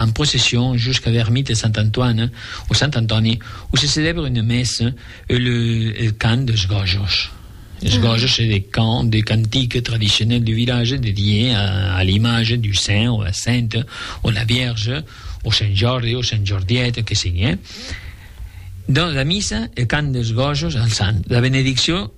en procession jusca l'ermita de Sant Antoine o Sant Antòni o se celèbre una messa e le el cant deus gojos. Es gojos se de cant de cantiques tradicionèl du vilatge dedié a l'image du saint o la sainte o la vierge o Sant Jordi o Sant Jordiet que sigue. Dans la missa el cant deus gojos al sant, la benedicció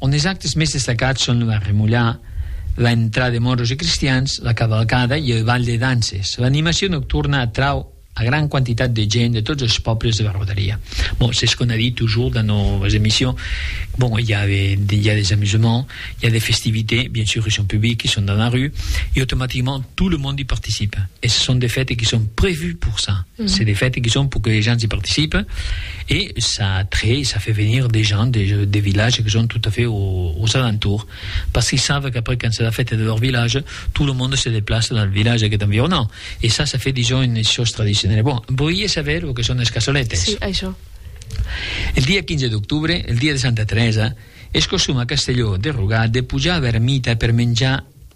ont es actes mès destacats son lo arremolhar, la entrada de moros e cristians, la cavalcada e el bal de dances. L'animacion nocturna atrau a gran quantitat de gent de tots es pòbles de la rodalia. Bon, s'es qu'on a dit tujor dans nos emissions, bon, i a, i a des amusements, i a des festivités, bien sûr, qui son publics, qui son dans la rue, e automaticament tot le monde i participe. Es son des fètes qui son prevus pour ça. C'est des fètes qui son pour que les gens i participe. e ça attrèi, ça fait venir des gens des des villages que son tout à fait aux alentours parce qu'ils savent qu'après quand c'est la fête de leur village tout le monde se déplace dans le village qui est environnant e ça ça fait disons une chose traditionnelle bon voié saber lo que son es cassoletes si això el dia 15 d'octubre el dia de Santa Teresa es costum a Castelló de Rugat de pujar a Vermita per menjar